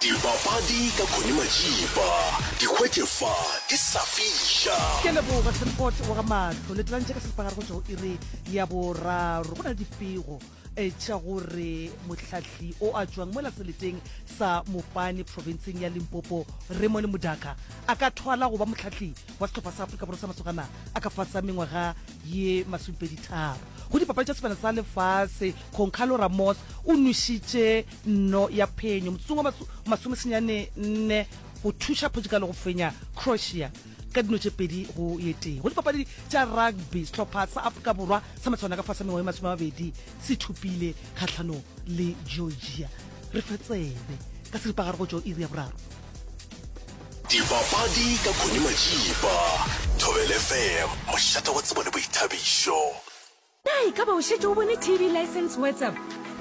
Dipapadi ka Connie Majiba, di hwetše fa di sa fiša. Ke a leboga Semport wa ga Mahlo le tlantše ka seripagare go tšwa go iri ya boraro. Go na le dipego eh, tša gore mohlahli o a tšwang mola seleteng sa Mopane profenseng ya Limpopo Raymond Mudaka a ka thwala go ba mohlahli wa sehlopha sa Afrika Borwa sa masogana a ka fasa mengwaga ye masomepedi tharo. Go dipapadi tša sebana sa lefase, Concalo Ramos o nwešitše nno ya phenyo motsong wa masomesenyane nne go thuša portugal go fenya croatia ka dino tše pedi go ye tee go dipapadi tša rugby sehlopha sa afrika borwa sa matshwana ka fa sa mengwae masome mabedi se thopile kgatlhanong le georgia re fa tsebe ka seripagare go tšo iri ya boraro dipapadi ka khoni majipa thobelefm mošate wa tsebo le boithabišo Na e ka ba o šetše o bone TV License WhatsApp?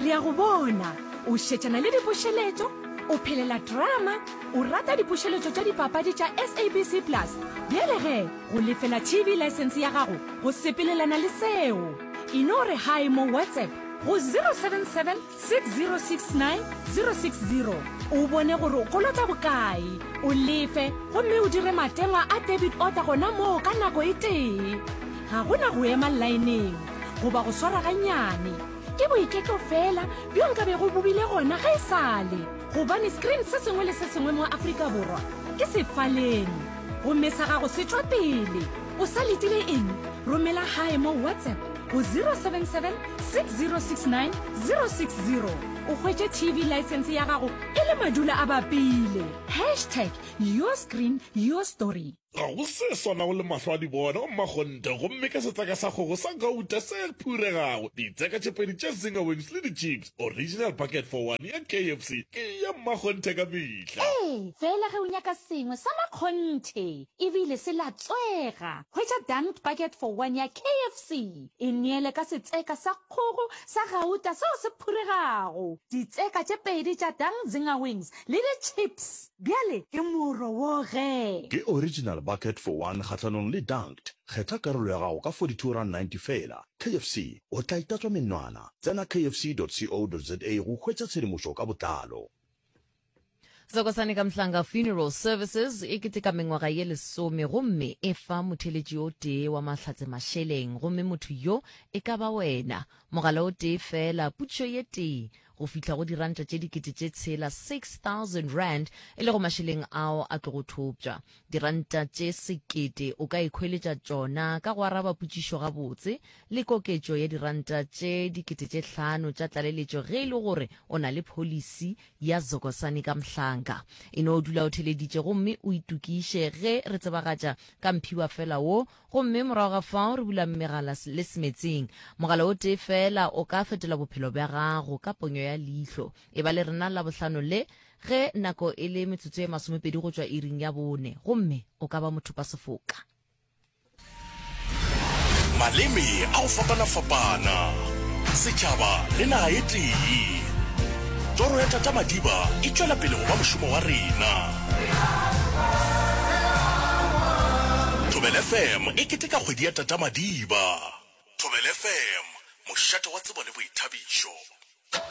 Re a go bona o šetšana le dipušeletšo, o phelela drama, o rata dipušeletšo tša dipapadi tša SABC Plus. Bjale ge go lefela TV License ya gago go sepelelana le seo, e no re hi mo WhatsApp go 077 6069 060 o bone gore o kolota bokae o lefe gomme o dire matengwa a debit order gona moo ka nako e tee ga go na go ema lineng goba go swara ganyane ke boiketlo fela bjo nka be go bobile gona ga e sale gobane screen se sengwe le se sengwe mo afrika borwa ke sefaleng gomme sa gago se tšwa pele O sa letile eng? Romela gae mo WhatsApp go 077 6069 060 o hwetše TV license ya gago e le madula a bapile. Hashtag your screen, your story. Ga go se swanago le mahlo a dibona wa mmakgonte gomme ka setseka sa kgogo sa gauta se phuregago, ditseka tše pedi tša zinger wings le di-chips. Original bucket for one ya KFC ke ya mmakgonthe ka mehla. Ee, fela ge o nyaka sengwe sa makgonthe e bile se latswega, hwetša Dunked Bucket for One ya KFC. E neele ka setseka sa kgogo sa gauta seo se phuregago, ditseka tše pedi tša Dunked Zinger Wings le di-chips. Bjale ke mo rowoge! Ke Original Bucket for One kgahlanong le Dunked. Kgetha karolo ya gago ka 42 rand 90 feela. KFC, o tla itatswa menwana. Tsena kfc.co.za go hwetša tshedimošo ka botlalo. Zakhosani Kamhlanga Funeral Services e keteka mengwaga ye lesome gomme e fa motheeletši o tee wa mahlatse mašeleng gomme motho yo e ka ba wena. Mogala o tee feela, putšo ye tee, go fihla go diranta tše dikete tše tshela, 6000 rand, e lego mašeleng ao a tlogo thopša. Diranta tše sekete o ka ikhweletša tšona ka go araba potšišo gabotse le koketšo ya diranta tše dikete tše hlano tša tlaleletšo ge e le gore o na le pholisi ya Zokosani ka Mhlanka. E no dula o theleditše gomme o itokiše ge re tsebagatša ka mphiwafela wo Gomme morago ga fao re bula megala le semetseng. Mogala o tee feela o ka fetola bophelo bja gago, ka ponyo ya leihlo. Eba le rena Labohlano le, ge nako e le metsotso ye masomepedi go tšwa iring ya bone, gomme o ka ba mothopasefoka. Maleme a go fapana-fapana, setšhaba le naga e tee. Toro ya Tata Madiba e tšwela pele go ba mošomo wa rena. Thobela FM e keteka kgwedi ya Tata Madiba. Thobela FM, mošate wa tsebo le boithabišo.